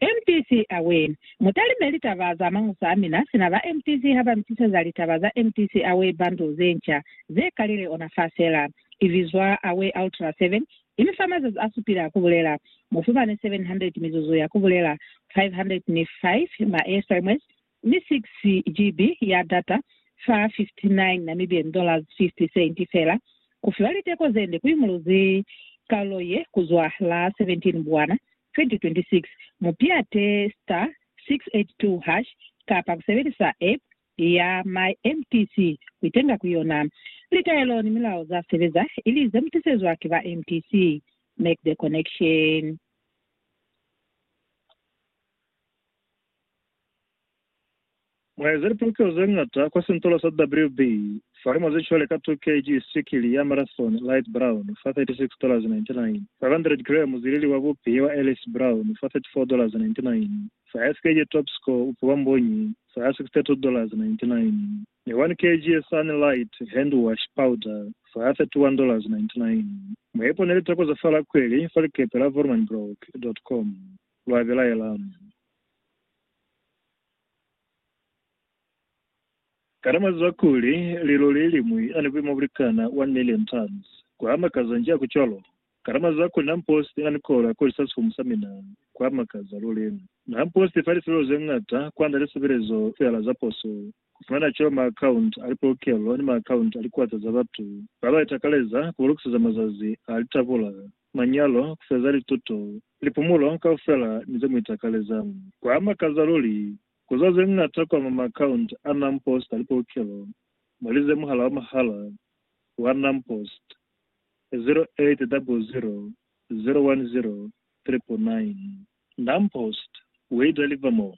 MTC Aware. Mutalime litaba za mañusa amina sina ba MTC haba mitiseza litaba za MTC Aware bundle zenca zekalile ona fa sela. Ibizwa Aware Ultra 7, imifa mazazi asupile a kubulela. Mufumane 700 mizuzu ya kubulela, 505 ma sms, ni 6 GB ya data fa $59.50 fela, ku fiwa liteko ze nde ku imuluzi kalulo ye ku zwa la 17 Mbwana, 2026. Mu piate star 682 hash kapa ku sebelisa app ya My mtc ku itenga ku yona. Litaelo ni milao za sebeza ili ze mu tisezwa ki ba mtc. Make the connection. Mwa eza lipalukiwa ze ñata kwa sintola sa WB fa limo ze cwale ka 2 kg sikili ya Marathon Light Brown fa $36.99, 500 grams zilili wa bupi wa Ellis Brown fa $34.99, fa 5 kg Top Score upi wa mbunyi fa $62.99, ni 1 kg Sun Light Hand Wash Powder fa $31.99. Mwa ipone litako za fa Lakweli fa likepe la Vormanbroek. Com lwa belaela. Kana mwazwa kuli lilo leliñwi ani buimo bulikana 1 million tons? Kwamakaza nji haku cwalo? Kana mwazwa kuli namposti ani kolo ya kolisa sifumu sa mina? Kwamakaza luli! Namposti ifa lisilelo zeñata kwand'a lisebelezo feela za poso. ku fumana ceo maakaunti a lipolokelo ni maakaunti a likuata za batu ba ba itakaleza ku ba lukiseza mazazi a litabula, manyalo, ku feza lituto, lipumulo kaufela ni ze mu itakaleza. Kwa makaza luli ku zwa ze ñata kwa mwa maakaunti a NamPost a lipolokelo mwa li ze muhala wa mahala wa NamPost, 0800 010 999. NamPost, We Deliver More,